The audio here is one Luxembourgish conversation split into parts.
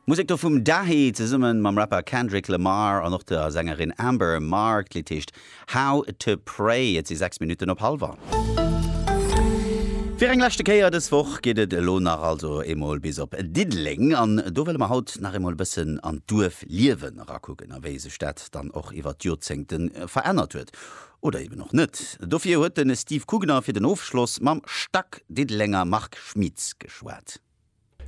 Musek do vum Dahi zesumme mam Rapper Kendrick Lamar an och der Sängerin Amber Mark. D'Lidd heescht How to Pray. Et si 6 Minutten op hallwer. Fir eng leschte Kéier dës Woch geet et elo nach also eemol bis op Diddeleng. An do wëlle mer haut nach eemol e bëssen an d'Duerfliewen erakucken a wéi sech dat dann och iwwert d'Jorzéngte verännert huet. Oder eben och net. Dofir huet de Steve Kugner fir den Ofschloss mam Stack-Diddelenger Marc Schmieds geschwat.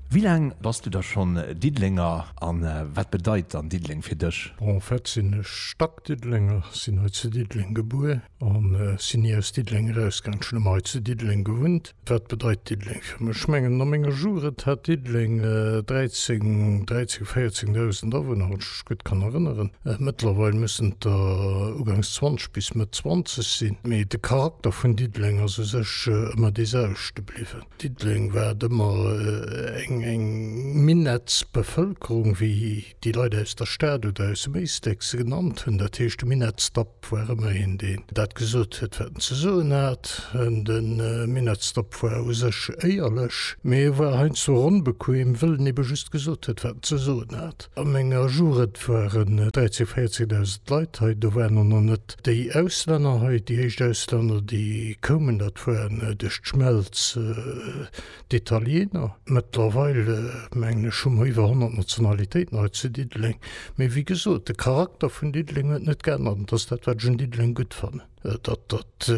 Wéi laang bass du da schonn Diddelenger a wat bedeit dann Diddeleng fir dech? Bon, en fait sinn ech Stack-Diddelenger, sinn hei zu Diddeleng gebuer a sinn ni aus Diddeleng erausgaangen. Ech hunn ëmmer hei zu Diddeleng gewunnt. Wat bedeit Diddeleng fir mech? Ech mengen, no menger Jugend hat Diddeleng 13, 13, 14.000 Awunner, wann ech mech gutt kann erënneren. Mëttlerweil mussen et der ugangs 20 bis Mëtt 20 sinn. Mee de Charakter vun Diddeleng ass u sech ëmmer dee selwechte bliwwen. Diddeleng war et ëmmer eng, eng Minettsbevëlkerung, wéi Déi Leit aus der Stad oder aus dem Éisteck se genannt hunn. Dat heescht, de Minettsdop war ëmmer een, deen dat gesot huet, wat en ze soen hat. De Minettsdop war u sech éierlech, mee e war heiansdo ronn bequem, wëll en ebe just gesot huet, wat en ze soen hat. A menger Jugend waren 13.000, 14.000 Leit hei. Do waren och nach net déi Auslänner hei. Déi éischt Auslänner, déi koumen, dat war duerch d'Schmelz D'Italiener, mëttlerweil mengen ech hu mer iwwer 100 Nationalitéiten hei zu Diddeleng. Mee wéi gesot, de Charakter vun Diddeleng huet net geännert an dat ass dat, wat ech un Diddeleng gutt fannen, dat dat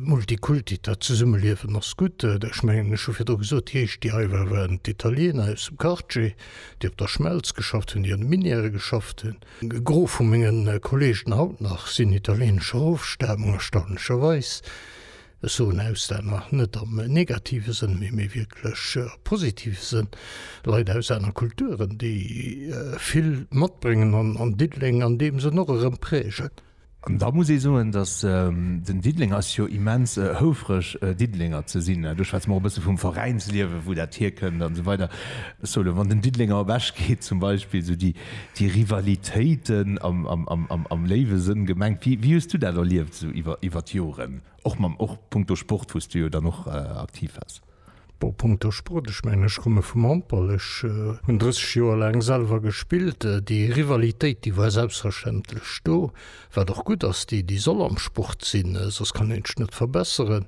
Multikulti, dat Zesummeliewen ass gutt. Ech mengen ech hu virdru gesot, déi éischt, déi hei waren, waren d'Italiener aus dem Quartier, déi op der Schmelz geschafft hunn, déi an de Minièrë geschafft hunn. E Gros vu menge Kolleegen haut nach sinn italieenescher Ofstamung, erstaunlecherweis. Ech soen Auslänner net am negative Sënn, mee méi wierklech am positive Sënn, Leit aus aner Kulturen, déi vill matbréngen an Diddeleng an deem Sënn och erëm prägen. An da muss ee soen, datt den Diddeleng ass jo immens houfreg, Diddelenger ze sinn. Do schwätze mer och e bësse vum Veräinsliewen, wou dat hierkënnt an esou weider. Ech soe elo, wann den Diddelenger ewechgeet zum Beispill, esou déi. Déi Rivalitéiten am léiwe Sënn gemengt. Wéi hues du dat erlieft esou iwwer d'Joren? Och mam, och punkto Sport, wou s du jo dann och aktiv wars? Bon, punkto Sport, ech mengen, ech komme vum Handball. Ech hunn 30 Joer laang selwer gespillt. Déi Rivalitéit, déi war selbstverständlech do. Wat och gutt ass, déi déi soll am Sport sinn, soss kann een d'Schnëtt verbesseren.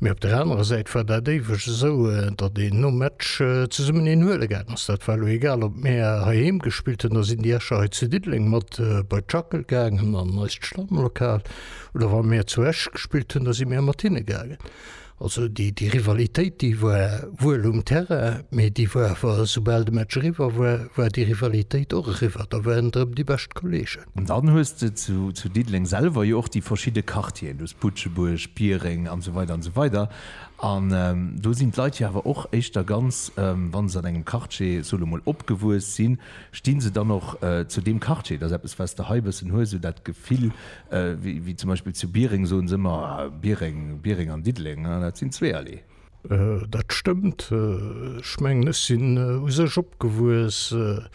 Mee op der anerer Säit war dat éiweg esou, datt een nom Match zesummen een huele gaangen ass. Dat war elo egal ob mär heiheem gespillt hunn, da sinn déi Escher hei zu Diddeleng mat bei d'Schackel gaangen an eist Stammlokal oder wa mär zu Esch gespillt hunn, da si mär mat hinne gaangen. Also déi Rivalitéit, déi war wuel um Terrain, mee déi war awer, esoubal de Match eriwwer war, war déi Rivalitéit och eriwwer. Da waren et erëm déi bescht Kolleegen. An dann hues de zu Diddeleng selwer jo och déi verschidde Quartieren. Du hues Butschebuerg, Biereng an esou weider an esou weider. An do sinn d'Leit jo awer och éischter ganz, wa se an engem Quartier, soe lo mol, opgewuess sinn, sti se dann och zu deem Quartier. Et ass eppes, wat s de hei e bëssen hues, esou dat Gefill, Wéi zum Beispill zu Biereng soen se ëmmer Biereng, Biereng an Diddeleng, dat sinn zwee Allée. Dat stëmmt. Ech mengen, ech sinn u sech opgewuess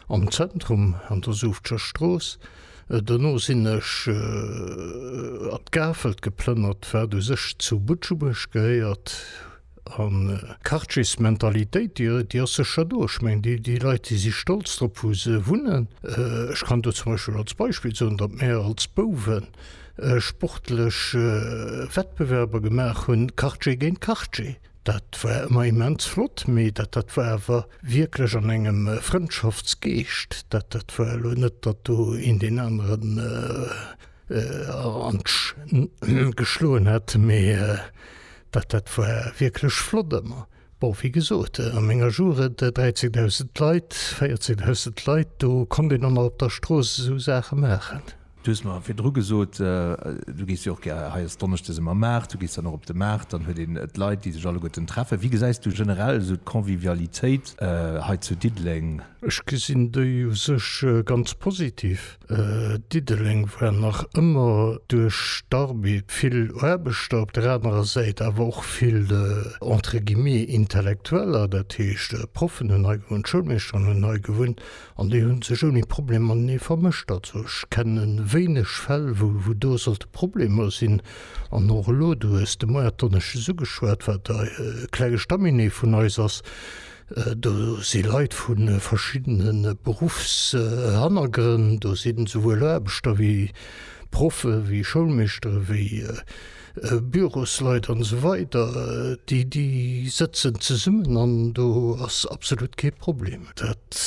am Zentrum an der Suuftscher Strooss. Dono sinn ech an d'Gafelt geplënnert, wat u sech zu Butschebuerg gehéiert. A Quartiers-Mentalitéit, déi, déi ass sécher do. Ech mengen, déi, déi Leit, déi si stolz drop, wou se wunnen. Ech kann do zum Beispill als Beispill soen, datt mär als Bouwe sportlech Wettbewerber gemaach hunn, Quartier géint Quartier. Dat war ëmmer immens flott, mee dat, dat war awer wierklech an engem Frëndschaftsgeescht. Dat, dat war elo net, datt do een deen aneren an d'Sch geschloen hätt, mee. Dat dat war wierklech flott ëmmer. Bon, wéi gesot, a menger Jugend 13.000 Leit, 14.000 Leit, do konnt een och nach op der Strooss esou Saache maachen. Du hues mer virdru gesot, du gees jo och gär, hei ass donneschdes ëmmer Maart, du gees dann och op de Maart, dann huet een d'Leit, déi sech alleguerten treffen. Wéi gesäis du generell esou d'Convivialitéit hei zu Diddeleng? Ech gesinn déi u sech ganz positiv. Diddeleng war nach ëmmer duerch d'Armée vill Aarbechter, op der anerer Säit awer och vill entre guillemets Intellektueller, dat heescht Proffen hunn hei gewunnt, Schoulmeeschteren hunn hei gewunnt an déi hu sech ouni Problem matenee vermëscht. Also ech kenne wéineg Fäll, wou do sollte Problemer sinn. An och elo, du hues de Moies d'Donneschdes ugeschwat, wat e kleng Estaminet vun eis ass, Do si Leit vu verschiddene Beruffshannergrënn, do sinn esouwuel Aarbechter wéi Proffe wéi Schoulmeeschtere wéi Bürosleit an esou weider, déi déi sëtzen zesummen an do ass absolut kee Problem. Dat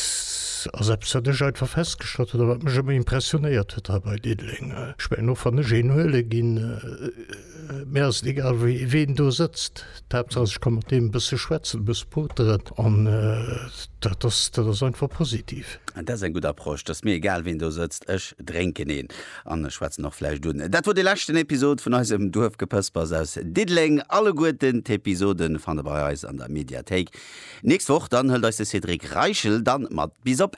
ass eppes wat ech einfach festgestallt hunn a wat mech ëmmer impressionéiert huet hei bei Diddeleng. Ech mengen och wann ech een huele ginn, Mir ass et egal ween do sëtzt, d'Haaptsaach ass ech ka mat deem e bësse schwätzen, e bësse poteren an dat ass dat ass einfach positiv. Dat ass eng gutt Approche, et ass mir egal ween do sëtzt, ech drénken een an ech schwätzen och vläicht un. Dat wor de leschten Episod vun eisem Duerfgepëspers aus Diddeleng. Alleguerten d'Episoden fannt der bei eis an der Mediathéik. Nächst Woch dann hëlt eis de Cédric Reichel dann mat bis op.